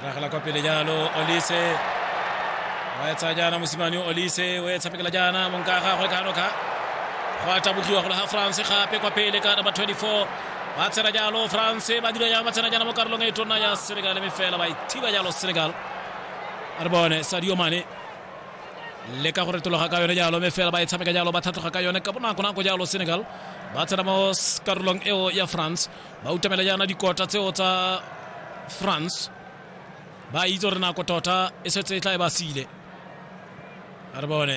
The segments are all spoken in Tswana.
Ragla kwa pele jalo Olise wa etsa jana mosimane Olise o etsa pekela jana monka ga go ka roka go a tabogiwa go la France gape kwa pele ka number 24 ba tsena jalo France ba dira jalo ba tsena jana mo karolong e tona ya Senegal mme fela ba ithiba jalo Senegal re bone Sadio Mane le ka go retologa ka yone jalo mme fela ba e tshameka jalo ba tlhatlhoga ka yone ka bonako nako jalo senegal ba tsena mo karolong eo ya france ba utamela jaana dikota tseo tsa france ba itse gore nako tota e setse e tla e ba sile a re bone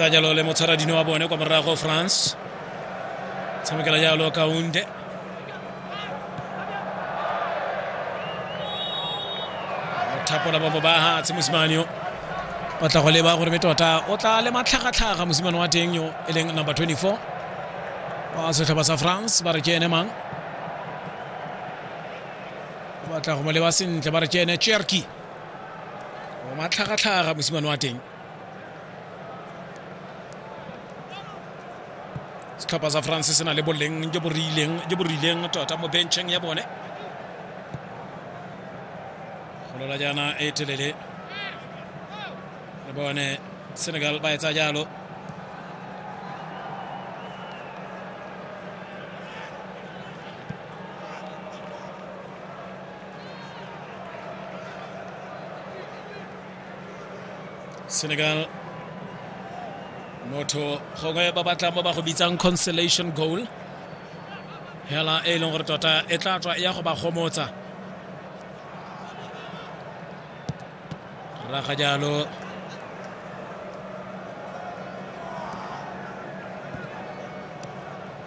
tsa jalo le motshwaradino wa bone kwa morago france Sami Kala Diallo Kaounde thapola ba ba ha tse mosimane yo o tla go leba gore be tota o tla le matlhagatlhaga mosimane wa teng yo e leng number 24 wa setlhopha sa france ba re ke ene mang o batla go mo leba sentle ba re ke ene cherki o matlhagatlhaga mosimane wa teng setlhopha sa france se na le boleng jo bo rileng jo bo rileng tota mo bencheng ya bone golola jaana e telele le bone senegal ba etsa jalo Senegal motho gongwe ba batla mo ba go bitsang consolation goal hela e leng gore tota e tla tswa e ya go ba gomotsa raga jalo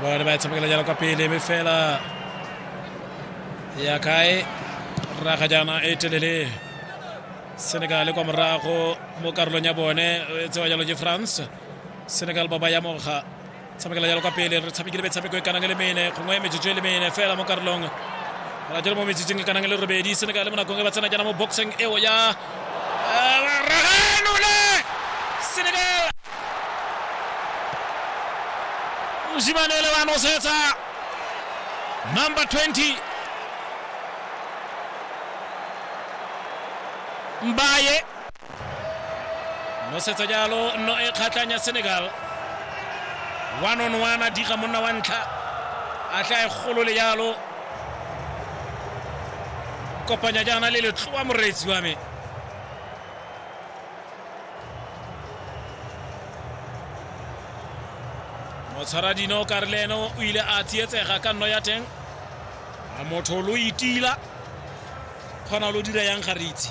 Bone ba tshamekela jalo kwa pele mme fela ya kae raga jaana e telele senegal kwa morago mo karolong ya bone e tsewa jalo ke france senegal ba ba ya moga tshamekela jalo ka pele re tshamekile metshameko e kanang e le mene gongwe metsotso e le mene fela mo karolong ra jalo mo metsotsong e kanang e le robedi seneka le mo nakong e ba tsena jaana mo boxing eo ya raganole senegal mosimane o le wa nosetsa number 20 mbaye nosetsa jalo nno e kgatlhang ya senegal one on one a diga monna wa ntlha a tle a e golole jalo kopanya jaana le letloa moreetsi wa me motshwara dino ka re le ene o ile a tsietsega ka nno ya teng a motho lo itila kgona lo dira yang ga re itse